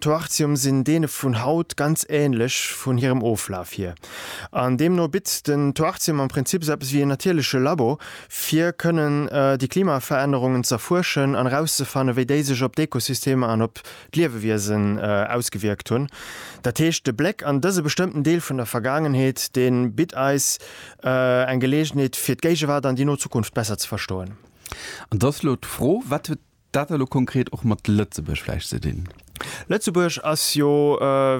Toarcium sinn deene vun haut ganz ähnlech vun hirem Oflaf hier. An deemno bitt den Toarcium am Prinzip esou eppes wéi een natierleche Labo, fir kënnen déi Klimaverännerungen z'erfuerschen an erauszefanne wéi déi sech op d'Ekosystemer an op d'Liewewiesen ausgewierkt hunn. Dat heescht, de Bléck an dëse bestëmmten Deel vun der Vergaangenheet, dee bitt eis eng Geleegenheet fir d'Géigewaart an déi no Zukunft besser ze verstoen. An et ass elo d'Fro, wat huet Dat hat elo konkret och mat Lëtzebuerg vläicht ze dinn. Lëtzebuerg ass jo,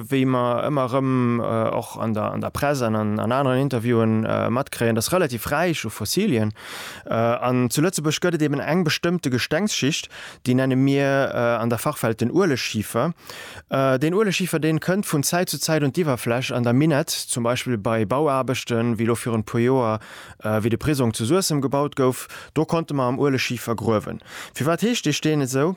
wéi mer ëmmer erëm och an der Press an an aneren Interviewe matkréien, dass relativ räich u Fossilien. An zu Lëtzebuerg gëtt et eben eng bestëmmte Gestengsschicht, déi nenne mir an der Fachwelt den Ueleschiefer. Deen Ueleschiefer, dee kënnt vun Zäit zu Zäit un d'Iwwerfläch an da minett zum Beispill bei Bauaarbechten, wéi elo virun e puer Joer Wéi de Prisong zu Suessem gebaut gouf, do konnte mer am Ueleschifer gruewen. Firwat heescht dee Steen esou?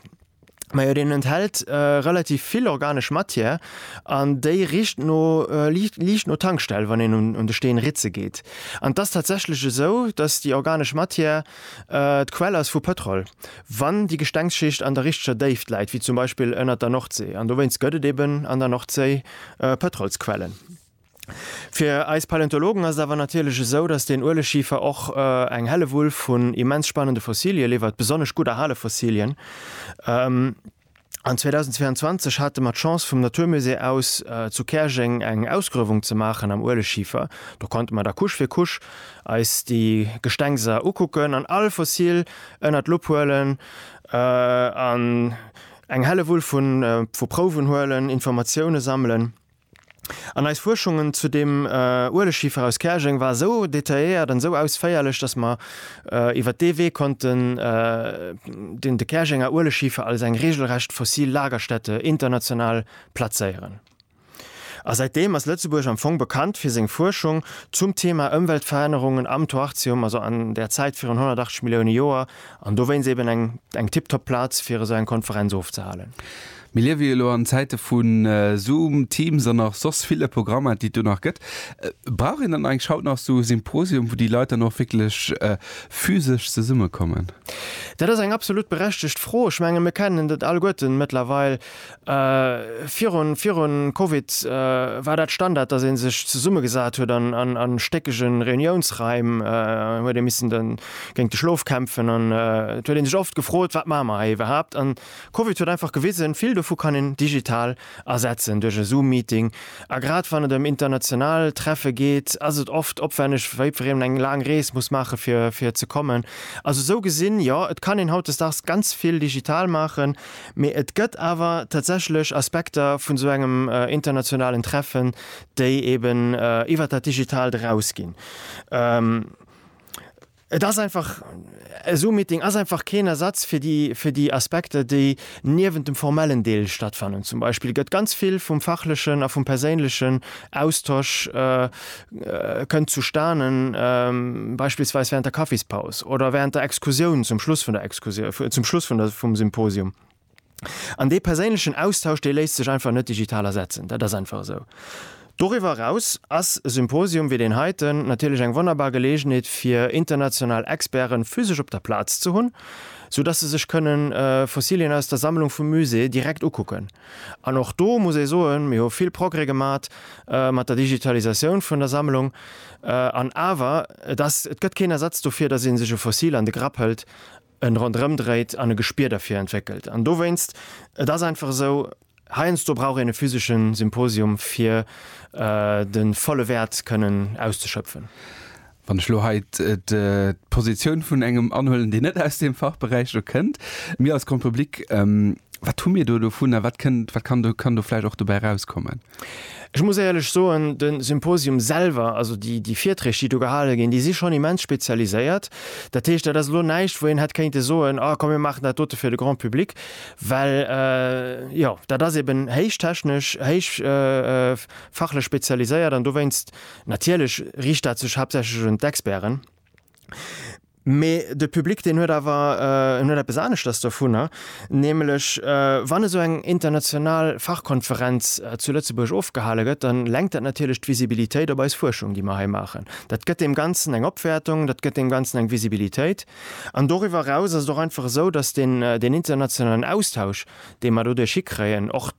Majo deen enthält relativ vill organesch Matière an déi richt no, liicht no Tankstell, wann een un de Steen ritze geet. An et ass tatsächlech esou, datt déi organesch Matière d'Quell ass vu Pëtrol, wann déi Gestengsschicht an der richteger Déift läit, wéi zum Beispill ënnert der Nordséi. An dowéinst gëtt et eben an der Nordséi Pëtrolsquellen. Fir eis Paläontologen ass et awer natierlech esou, datt den Ueleschifer och eng Hellewull vun immens spannende Fossilie liwwert, besonnesch gutt erhale Fossilien. An 2022 hate mer d'Chance vum Naturmusée aus zu Käerjeng eng Ausgruewung ze maachen am Ueleschifer. Do konnte mer da Couche fir Couche eis déi Gestengser ukucken an all Fossil ënnert d'Lupp huelen an eng Hellewull vu Prouwen huelen, Informatiounen sammelen. An eis Fuerschungen zu deem Ueleschifer aus Käerjeng war esou detailléiert an esou ausféierlech, dass mer iwwert dee Wee konnten den de Käerjenger Ueleschifer als eng regelrecht fossil Lagerstätte international plazéieren. A säitdeem ass Lëtzebuerg am Fong bekannt fir seng Fuerschung zum Thema Ëmweltverännerungen am Toarcium, also an der Zäit virun 180 Millioune Joer, an dowéinst eben eng tiptop Plaz fir esou eng Konferenz ofzehalen. Mir liewe jo lo an Zäite vu Zoom, Teams an nach soss ville Programmer, déi et do nach gëtt. Brauch een dann eigentlech haut nach esou e Symposium, wou déi Leit dann och wierklech physesch zesummekommen? Dat ass eng absolut berechtegt Fro. Ech menge mir kennen dat alleguerten mëttlerweil. Virun, virun Covid war dat Standard, dass ee sech zesummegesat huet an a stéckege Reuniounsraim, huet ee missen géint de Schlof kämpfen an et huet ee sech oft gefrot, wat maache mer hei iwwerhaapt. Covid huet einfach gewisen, vill dovu kann een digital ersetzen, duerch e Zoom-Meeting. A grad wann et ëm international Treffe geet, ass et oft opwänneg, wéi wann een eng laang Rees muss maachen, fir fir ze kommen. Also esou gesinn, jo, et kann een hautdesdaags ganz vill digital maachen, mee et gëtt awer tatsächlech Aspekter vun esou engem internationalen Treffen, déi eeben iwwert dat Digitaalt erausginn. Et ass einfach, e Zoom-Meeting ass einfach keen Ersatz fir déi, fir déi Aspekter, déi niewent dem formellen Deel stattfannen. Zum Beispill gëtt ganz vill vum fachlechen a vum perséinlechen Austosch, kënnt zustane beispillsweis während der Kaffispaus oder während der Exkursioun, zum Schluss vun der Exkursioun, zum Schluss vum Symposium. An dee perséinlechen Austausch, dee léisst sech einfach net digital ersetzen. Dat ass einfach esou. Doriwwer eraus ass e Symposium wéi deen heiten natierlech eng wonnerbar Geleegenheet, fir international Experten physesch op der Plaz ze hunn, sou dass se sech kënnen Fossilien aus der Sammlung vum Musée direkt ukucken. An och do muss ee soen, mir hu vill Progrès gemat mat der Digitalisatioun vun der Sammlung. An awer, et ass, et gëtt keen Ersatz dofir, dass ee sech e Fossil an de Grapp hëlt en ronderëm dréit an e Gespier derfir entwéckelt. An dowéinst, et ass einfach esou, heiansdo brauch een e physesche Symposium, fir de volle Wäert kënnen auszeschöpfen. Wann ech elo hei d'Positioun vun engem anhuelen, deen net aus deem Fachberäich do kënnt, mir als Grand Public, wat hu mir do dovun a wat kann do vläicht och dobäi erauskommen? Ech muss éierlech soen, de Symposium selwer, also déi Virträg, déi do gehale ginn, déi si schonn immens spezialiséiert. Dat heescht, dat ass elo näischt, wou een hätt kéinte soen, Ah, komm mir maachen dat dote fir de Grand public. Well, jo, dat ass eben héich technesch, héich fachlech spezialiséiert an dowéinst natierlech riicht dat sech haaptsächlech un d'Experten. Mee de Public deen huet awer en huet eppes aneschters dovunner, nämlech wann esou eng international Fachkonferenz zu Lëtzebuerg ofgehale gëtt, da lenkt dat natierlech d'Visibilitéit op eis Fuerschung, déi mer hei maachen. Dat gëtt deem Ganzen eng Opwäertung, dat gëtt deem Ganzen eng Visibilitéit. An doriwwer eraus ass et och einfach esou, datt deen internationalen Austausch, dee mer doduerch hikréien, och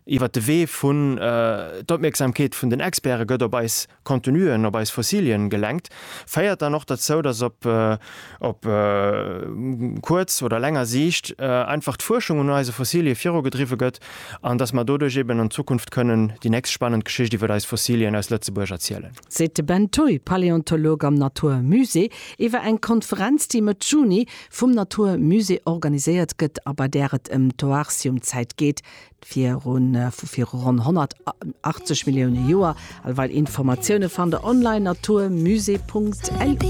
iwwert de Wee vun d'Opmierksamkeet vun den Experte gëtt op eis, Contenuen op eis Fossilien gelenkt, féiert dann och derzou, dass op op kuerz oder länger Siicht einfach d'Fuerschung un eise Fossilie virugedriwwe gëtt an dass mer doduerch eben an Zukunft kënnen déi nächst spannend Geschicht iwwert eis Fossilien aus Lëtzebuerg erzielen. Seet de Ben Thuy, Paläontolog am Natur Musée, iwwer eng Konferenz, déi Mëtt Juni vum Natur Musée organiséiert gëtt a bei där et ëm d'Oartium-Zäit geet, virun vu viru ronn 180 Millioune Joer. All weil Informatioune fannt der online naturmusée.lu.